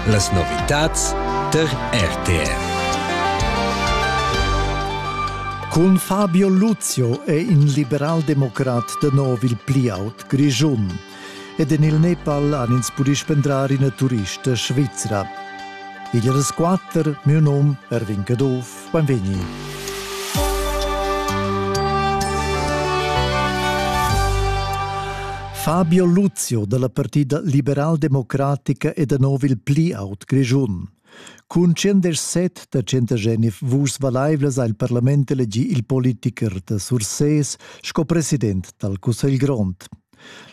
Las novitads der RTR. Cun Fabio Luzio è in liberaldemocrat da nov il pli aut Grischun. Ed en il Nepal han ins pudì spendrar ina turista svizra. Igl resquatter, miu num Erwin Caduff. Beinvegni. Fabio Luzio dalla Partida liberaldemocratica e da nov il pli aut Grischun. Cun 107 da 109 vuschs valaivlas ha il parlament elegì il politicher da Sursés sco president dal Cussegl grond.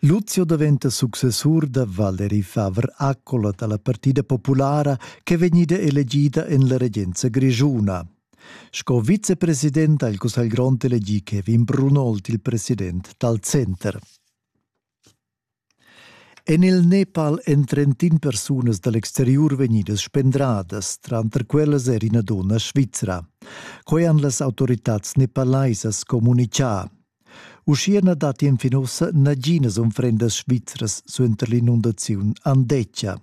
Lucio daventa successur da Valery Favre Accola dalla Partida Populara che vegnida elegida en la regenza grischuna. Sco vicepresident ha il Cussegl grond elegì Kevin Brunhold il president dal center. En il Nepal èn trentin persunas dal exteriur vegnidas spendradas, tranter quellas er ina donna svizra. Quai han las autoritads nepalaisas communitgà. Uschia na datti enfin ussa naginas unfrendas svizras suenter l'inundaziun Andeccia.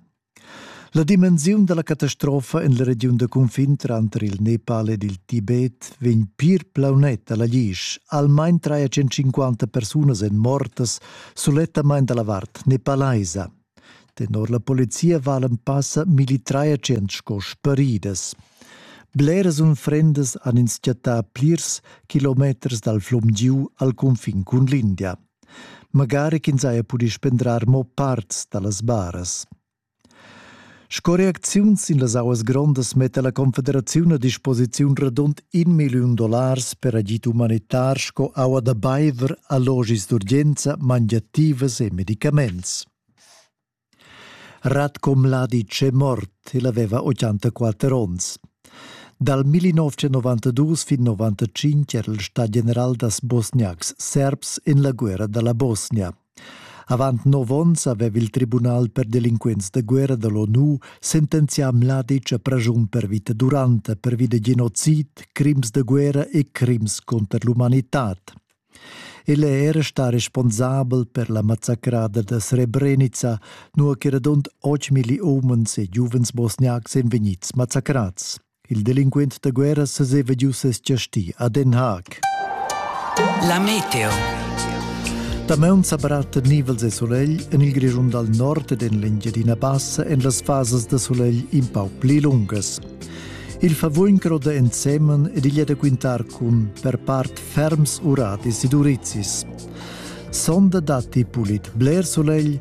La dimensiun da la catastrofa en la regiun da cunfin tranter il Nepal ed il Tibet vegn pir plaunet a la Glisch. Almain 350 persunas èn mortas sulettamain da la vart nepalaisa. Tenor la polizia valan passa millitrai tschient sco sparidas. Bleras unfrendas han ins chattà plirs kilometers dal flum giu al cunfin cun l'India. Magari ch'ins haja pudì spendrar mo parts da las baras. Sco reacziun sin las auas grondas metta la Confederaziun a disposiziun radund in milliun dollars per agid umanitar sco aua da baiver, allogis d'urgenza, mangiativas e medicaments. Ratko Mladic è mort, el aveva 84 onns. Dal 1992 fin 95 era il stat general das Bosniaks serbs en la guerra dalla Bosnia. Avant nov onns aveva il Tribunal per delinquents da guerra da l'ONU sentenzià Mladic a praschun per vita duranta pervi da genocid, crims da guerra e crims cunter l'umanitad. El è era stà responsabel per la massacrada da Srebrenica, nua che radund 8 millioni umens e giuvens bosniacs èn vegnids massacrads. Il delinquent da guerra seseva giu ses giasti a Den Haag. La meteo. Damaun sa baratta nivels e solegl en il Grischun dal nord ed en l'Engiadina Bassa en las fasas da solegl in pau pli lungas. Il favugn croda ensemen ed igl è da quintar cun per part ferms uradis ed urizis. Sonda datti pulit bler solegl,